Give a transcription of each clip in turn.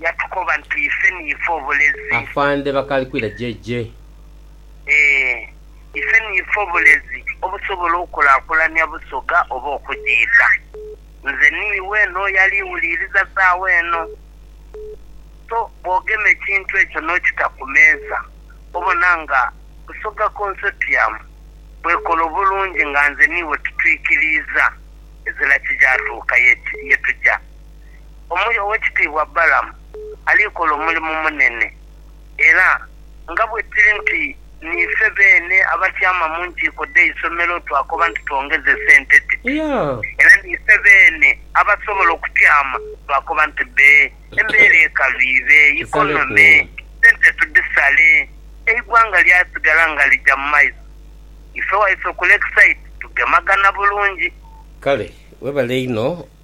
yatukoba nti ife niife obulezi. Afande Bakalikwira JJ. Ee, ife niife obulezi obusobola okukulakulania Busoga oba okugiita. Nze niiwe n'oyo ali wuliiriza saagho eno. So bwogema ekintu ekyo n'okita ku meeza, obona nga Busoga Consortium bwekola obulungi nga nze niiwe tutwikiriiza ezira kigyatuuka ye tuja. omuli Owekitiibwa Balaam ali kola omulimu munene era nga bwekiri nti niife beene abatyaama mu nkiiko dh'eisomero twakoba nti twongeze esente dhe era niife beene abasobola okutyaama twakoba nti bbe embeera ekalu ibe ikonome sente tudhisale eigwanga lyasigala nga lija mu maiso ife waife ku Lakeside tugemagana bulungi. Kale webale inho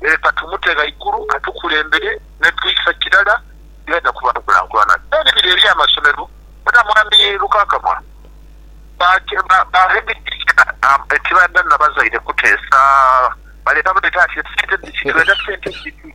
leka tumute ghaigulu atukulembere ne twisa kirala yaidha kuba nkulankulana. Then biri eri amasomero bona mwami Lukakamwa ba headteacher ekibanda nabazaire kuteesa baleeta buleeta ati esente dhiki twenda sente dhiki.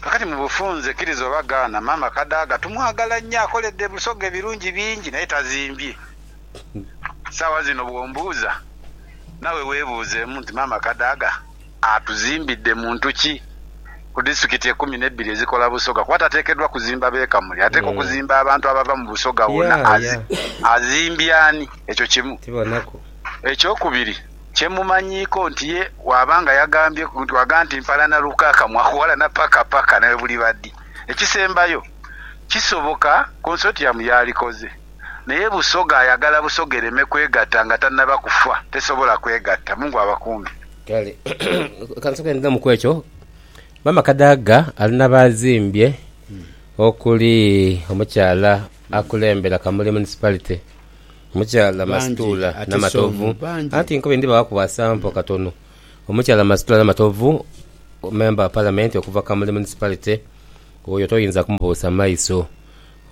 Kakati mu bufunze, kiriza oba gaana, maama Kadaga tumwagala nnyo. Akoledde Busoga ebirungi bingi naye tazimbye. Saawa zino bwombuuza, nawe webuuzeemu nti maama Kadaga atuzimbidde muntu ki ku disitulikiti ekumi nebbiri ezikola Busoga kuba tateekeddwa kuzimba b'e Kamuli ateekwa okuzimba abantu abava mu Busoga wonna. Azimbye ani? Ekyo kimu. Ekyokubiri. Kye mumanyiiko nti ye bw'aba nga yagambye ku nti waga nti mpalana lukaaka mwaghalana paka paka naye buliba dhi. Ekisembayo, kisoboka Consortium yaalikoze naye Busoga ayagala Busoga ereme kwegatta nga tannaba kufa, tesobola kwegatta. Mungu abakuume. Kale ka nsooke ndhemu ku ekyo. Maama Kadaga ali na baazimbye okuli omukyala akulembera Kamuli Municipality, Omukyala Masituula Namatovu anti nkobe ndibaghaku bwa sampo katono Omukyala Masitula Namatovu Member of Parliament okuva Kamuli Municipality oyo toyinza kumubuusa maiso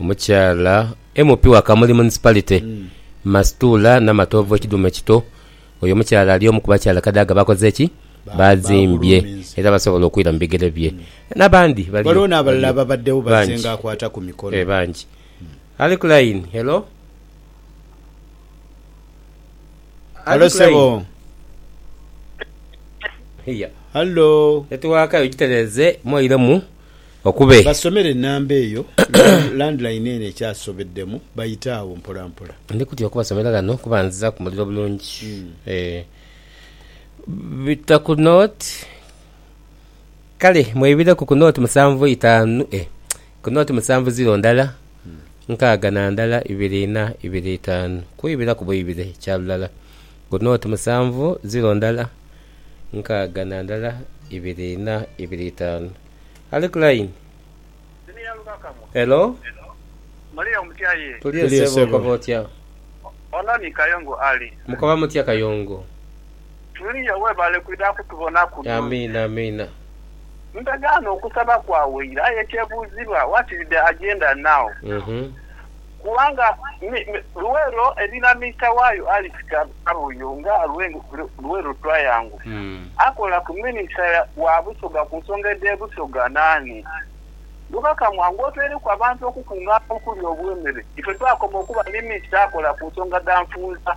Omukyala MP wa Kamuli Municipality Masituula Namatovu Ekidhuume kito Oyo omukyala ali omu kubakyala Kadaga bakoze ki? Bazimbye era basobola okwira mu bigere bye Nabandi baliyo Ghaligho n'abalala ababaddewo bangi bazzenga akwata ku mikono. Bangi. Ali ku line, hello? Ali Halo ku sebo. line? Iya. Halo. Netiwaaka yo gitereeze mwoiremu okube. Basomere enamba eyo land- landline eno ekyasobeddemu bayite agho mpola mpola. Ndi kutya okubasomera ghano kuba nziza ku muliro bulungi. Eh. Bita ku note. Kale mwebireku ku note musanvu itaanu eh Knoti musanvu ziro ndala, nkaaga na ndala ibiri ina, ibiri itaanu, kwibira ku bwibire kya lulala. Knoti musanvu ziro ndala, nkaaga na ndala ibiri ina, ibiri itaanu. Ali ku layini? Helo? Tuliyo ssebo, okoba otya? Mukoba mutya Kayongo? Tulia webale kwidha kutubonaku nonse. Amiina amiina. Ndagaana okusaba kwawaire aye ekyebuuzibwa what is the agenda now? Kubanga Luwero erina Mister waayo Alice Kabuye nga Luwero Triangle akola ku minister wa Busoga ku nsonga edhe Busoga naani mubaka mwange otweireku abantu okukungana okuli obwemere ife twakoma okuba ni Mister akola ku nsonga dha nfunza.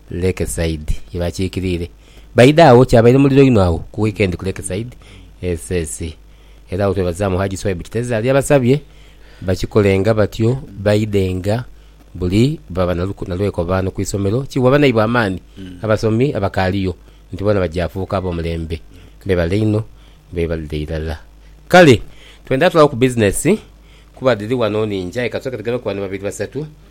Lakeside ye bakiikiriire baidha agho. Kyabaire muliro inho agho ku wiikendi ku Lakeside SS era agho twebazaamu Hajji Swaibu Kiteezi ali abasabye bakikolenga batyo baidhenga buli bwe baba na lwekobaano ku isomero kiwa banaibwe amaani abasomi abakaaliyo nti boona baja fuuka ab'omulembe. Beebale inho beebalire irala. Kale twendha tulawo ku bizinesi kuba dhiri wano ningi aye ka tusooke tugeme ku bano babiri basatu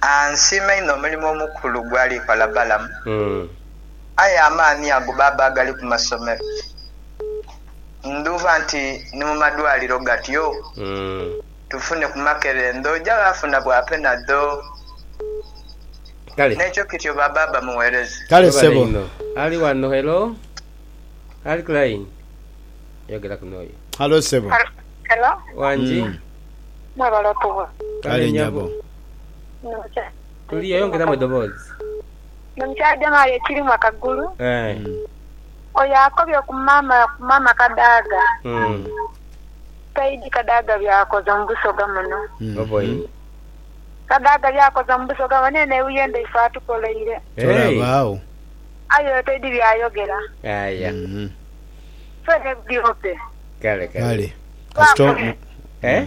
A Nsiima inho omulimo omukulu gw'ali kola Balamu. Aye amaani ago baba agali ku masomero, ndhuuba nti ni mu madwaliro gatyo. Tufune ku makerendho, oja ghaafuna bwa penadho. Kale. N'ekyo kityo baba aba mugheereza. Kale Webale ssebo. inho. Ali wano, hello? Ali ku line? Yogeraku n'oyo. Halo ssebo. Hello. Wangi? Mwebale otuwa. Kale nyabo. Toli yayongeramu edoboozi. Nomukyademali ekirimu akagulu. Oyo akobye ku mama ku mama Kadaga. Saidi Kadaga byakoze mu Busoga muno. Kadaga byakoze mu Busoga muno eno euyende ife atukoleire. Tolabaawo. Aye oyo taidi byayogera. Aya. Ffe ne bdiope. Kale kale. Kale. Kasita. Eh?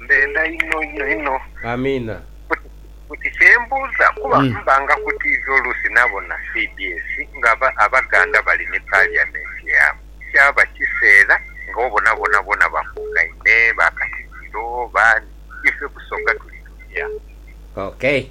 Mbendha inho inho inho. Amiina. Buti kyembuuza kuba mba nga ku TV oluusi nabona cbs nga abaganda bali ni parliament yaabwe kyaba kiseera nga obona boonaboona bakungaine, ba katikiro, baani, ife Busoga tuli tutya? Okay.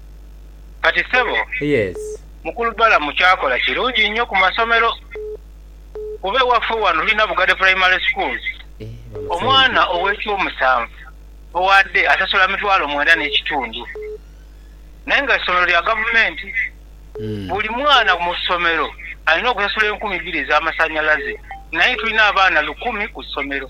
Kati sebo mukulu Balamu kyakola kirungi nnyo ku masomero kuba ewaffe wano tulina Bugade Primary School omwana ow'ekyomusanvu owaadde asasula mitwalo mwenda n'ekitundu naye nga ssomero lya gavumenti buli mwana mu ssomero alina okusasula enkumi bbiri ez'amasannyalaze naye tulina abaana lukumi ku ssomero.